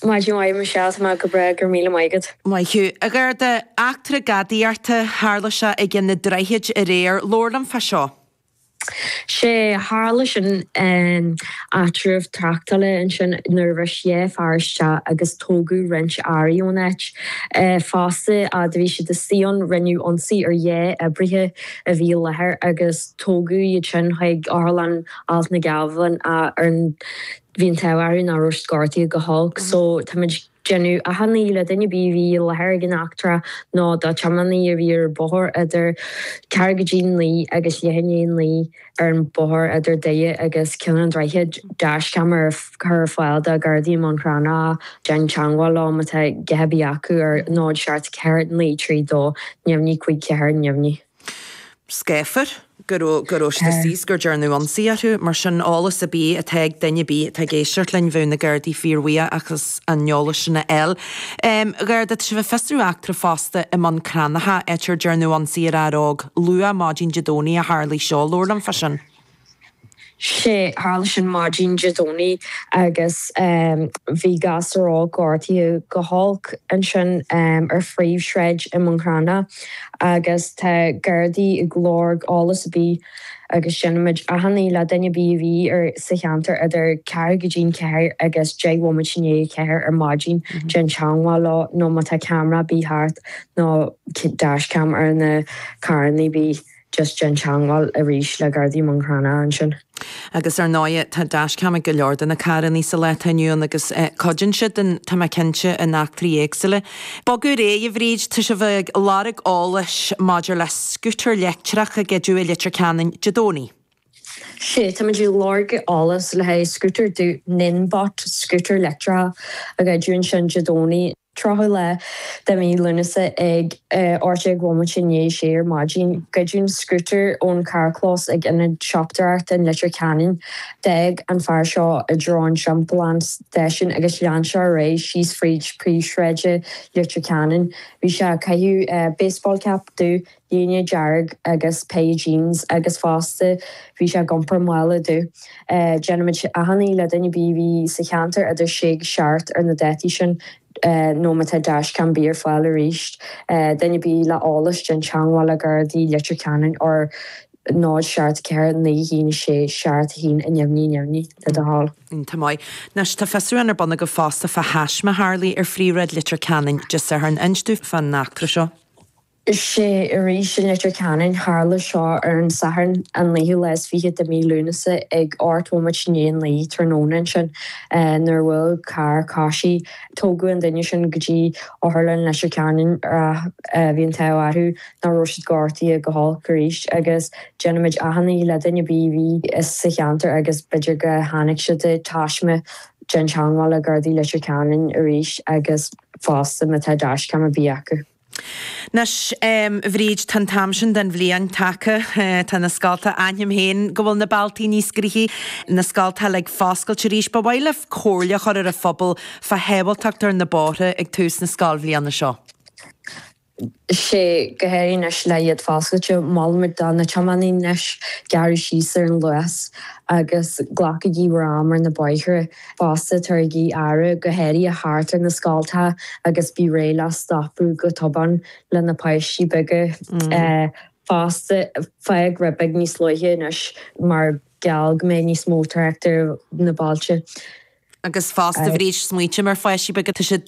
Maidin mhaith, Michelle, tá mé go breá go raibh míle maith agat. Maith thú, a Gharda. Eachtra gadaíochta, tharla seo ag Ceann an Droichid aréir. Labhair liom fá seo. Sea, tharla sin. Áitreabh tráchtála ansin nuair a bhris dhá fear isteach agus tógadh roinnt earraí ón áit. Fosta, fhaid a bhí siad istigh ann, rinneadh ionsaí ar dhá oibrithe a bhí i láthair agus tógadh iad sin chuig Otharlann Alt na nGealbhan ar an Bhí an t-ádh orthu nach raibh siad gortaithe go holc so táimid ag déanamh achainí le duine ar bith a bhí i láthair ag an eachtra nó do tiománaí a bhí ar bóthar idir ceathrú go dtí a naoi agus leath i ndiaidh a naoi ar an bóthar idir Doire agus Ceann an Droichid dashcam a chur ar fáil do Ghardaí i mBun Cranncha déan teagmháil leo má tá a dhath ar bith acu ar 074 932 054 neamhní. scáfar, go raibh siad ag gur dearnadh ionsaí orthu. Mar sin, eolas ar bith atá ag duine ar bith atá ag éisteacht linn, bheadh na Gardaí fíorbhuíoch as an eolas sin a fháil. Garda, tá sibh ag fiosrú eachtra fosta i mBun Cranncha, áit ar dearnadh ionsaí ar fhear óg luath maidin Dé Domhnaigh a tharla seo. Labhair liom fá sin. Sea, tharla sin maidin Dé Domhnaigh agus bhí gasúr óg gortaithe go holc ansin ar phríomhshráid i mBun Cranncha agus tá Gardaí ag lorg eolas ar bith agus déanaimid achainí le duine ar bith a bhí sa cheantar idir ceathrú go dtí'n ceathair agus deich bhomaite i ndiaidh a ceathair ar maidin déan teangmháil leo nó má tá ceamara ar bith thart nó dashcam ar na carranna ar bith. just déan teangmháil arís le Gardaí i mBun Cranncha ansin. Agus ar ndóighe, tá dashcam ag go leor de na carrannaí sa lá atá inniu ann agus cuidíonn siad sin, tá mé cinnte, in eachtraí éagsúla. Bogadh ar aghaidh, a Bhríd. Tá sibh ag lorg eolais maidir le scútar leictreach a goideadh i Leitir Ceanainn Dé Domhnaigh? Sea, táimid ag lorg eolais le haghaidh scútar dubh Ninebot, scútar leictreach a goideadh ansin Dé Domhnaigh. 30 lá de mhí Lúnasa ag ocht déag bomaite i ndiaidh a sé ar maidin. Goideadh scútar ón charrchlós ag Ionad Siopadóireachta i Leitir Ceanainn. D'fhág an fear seo i dtreo an timpeallán Station agus lean sé ar aghaidh síos fríd príomhshráid Leitir Ceanainn. Bhí sé ag caitheamh baseball cap dubh. Léine dearg agus péire jeans agus fosta bhí sé ag iompar mála dubh. Déanaimid achainí le duine ar bith a bhí sa cheantar idir a sé agus a seacht ar an dáta sin nó má tá dash-cam ar bith ar fáil arís duine ar bith le eolas déan teangmháil le Gardaí Leitir Ceanainn ar 0 seacht 4 9 1 6 seacht 1 neamhní neamhní le do thoil. Tá maith. Anois tá fiosrúchán ar bun agaibh fosta fá thaisme a tharlaigh ar phríomhshráid Leitir Ceanainn Dé Sathairn. Inis domh faoin eachtra seo. Is é arís i Leitir Ceanainn Tharla seo ar an Satharn, an naoú lá is fiche de mí Lúnasa, ag ocht nóiméad i ndiaidh a naoi tráthnóna ansin, nuair a bhuail carr coisí. Tógadh an duine sin go dtí Otharlann Leitir Ceanainn ach bhí an t-ádh orthu nach raibh siad gortaithe go holc arís agus déanaimid achainí le duine ar bith a bhí sa cheantar agus b'fhéidir go chonaic siad an taisme déan teangmháil le Gardaí Leitir Ceanainn arís agus fosta má tá dashcam ar bith acu. Anois, Bhríd, tá an t-am sin den bhliain tagtha. Tá na scoltacha, aithním féin go bhfuil na bealtaí níos gnoithí, na scoltacha ag foscailt arís. Ba mhaith libh comhairle a chur ar an phobal fá shábháltacht ar na bóithre ag tús na scoilbhliana seo. Sea, go háirithe anois le iad foscailte. Molaimid do na tiománaithe anois gearradh síos ar an luas agus glacaigí bhur am ar na bóithre. fosta tabharaigí aire go háirithe thart ar na scoltacha agus bí réidh le stopadh go tobann le na páistí beaga fosta. Fág rud beag níos luaithe anois mar gheall go mbeidh níos mó tráchta ar na bailte. Agus fosta bí ag smaointeamh ar pháistí beaga tá siad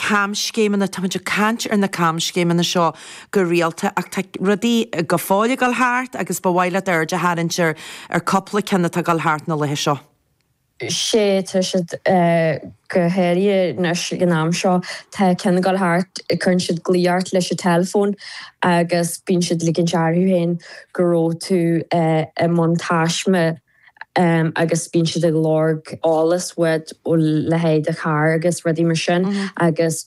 camscéimeanna. Táimid ag caint ar na camscéimeanna seo go rialta ach tá rudaí go fóill ag dul thart agus ba mhaith leat aird a tharraingt ar cúpla ceann atá ag dul thart na laetha seo. Sea, tá siad go háirithe anois ag an am seo. Tá ceann ag dul thart, cuireann siad glao ort leis an teileafón agus bíonn siad ag ligint orthu féin go raibh tú i mbun taisme. agus bíonn siad ag lorg eolas uait a leithéid do charr agus rudaí mar sin agus.